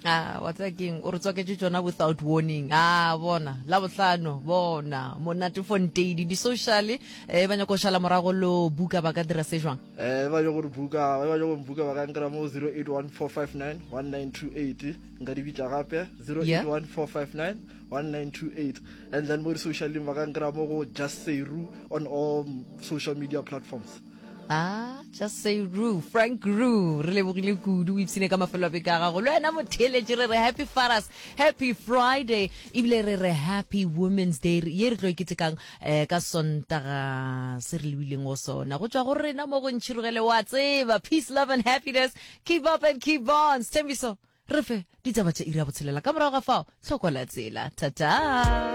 Ah, wa tsaya keng o re tswaketse tsona without warning ah bona la bohlano bona monate fonteidi di-social eh ba nyako go šala morago lo buka ba ka dira se jwang eh ba nyako re buka ba nyako buka ba ka nkra mo 0814591928 nka di bitla gape 0814591928 and then mo di-social ba ka nkra mo go just seru on all social media platforms Ah, just say Roo, Frank Roo. Re lebogile kudu o ipsine ka mafelo a beke a gago. Le wena motheletše re re happy fathers, happy Friday. Ebile re re happy women's day re- ye re tlo e ketekang eh, ka sontaga se re lebileng go sona. Go tšwa go rena mo go ntšhirogele wa tseba. Peace, love and happiness. Keep up and keep on. Stembiso, re fe ditaba tša iri ya botshelela. Ka morago ga fao, tlhoko la tsela. Ta-ta.